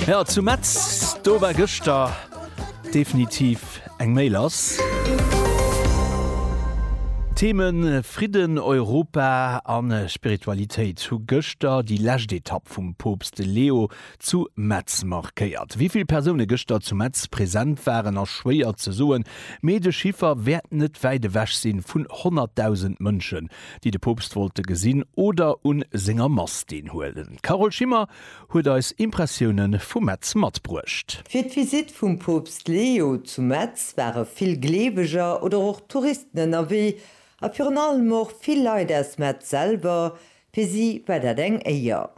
Ja zu Metz do war gëschter definitiv eng méi lass. Themen Fridden, Europa an Spiritualitéit hu gëschter déi lescht Etapp vum Poopst Leo zu Metz markéiert. Wivill Persoune gëschter zu Metz present waren ass schwéier ze soen, mee de Chiffer wäert net wäit ewech sinn vun 100.000 Mënschen déi de Poopst wollte gesinn oder un senger Mass deen huelen. D'Carole Schimmer huet eis Impressioune vu Metz matbruecht. Fir d'Visitt vum Poopst Leo zu Metz ware vill Gleeweger oder och Touristen ënnerwee a virun allem och vill Leit aus Metz selwer. Fir si war dat eng Éier.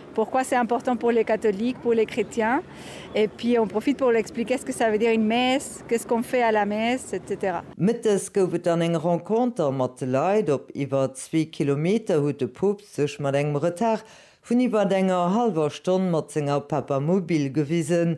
Pourquoi c'est important pour les catholiques, pour les chrétiens et puis on profite pour l'expliquer ce que ça veut dire une messe, qu'est-ce qu'on fait à la messe, etc. Mëttes gouf et dann eng Renconter mat de Leit. Op iwwer zwee Kilometer huet de Poopst sech mat engem Retard vun iwwert enger hallwer Stonn mat senger Papamobil gewisen.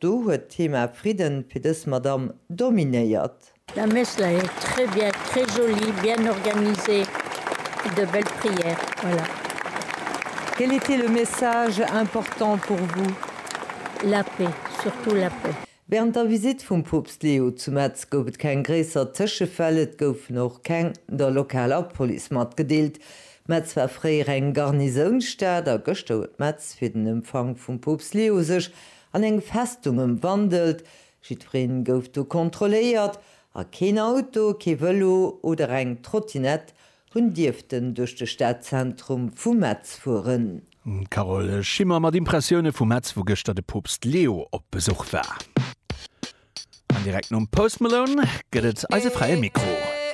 Do huet d'Thema Fridden fir dës Madamm dominéiert. Mme Messler, Très bien, très joli, bien organisé, de belle prière. Voilà. Quel était le message important pour vous? La paix, surtout la paix. Während der Visite vum Poopst Leo zu Metz gouf et keng gréisser Tëschefäll, et goufen och keng der lokaler Police matgedeelt. Metz war fréier eng Garnisounstad a gëschter huet Metz fir den Empfang vum Poopst Leo sech An eng Festung ëmwandelt. Jiddwereen gouf do kontrolléiert a keen Auto, kee Vëlo oder eng Trottinett hunn dierften duerch de Stadzentrum vu Metz fueren. D'Carole Schimmer mat Impressioune vu Metz, wou gëschter de Poopst Leo op Besuch war. An direkt nom Post Malone gëtt et eise Fräie Mikro.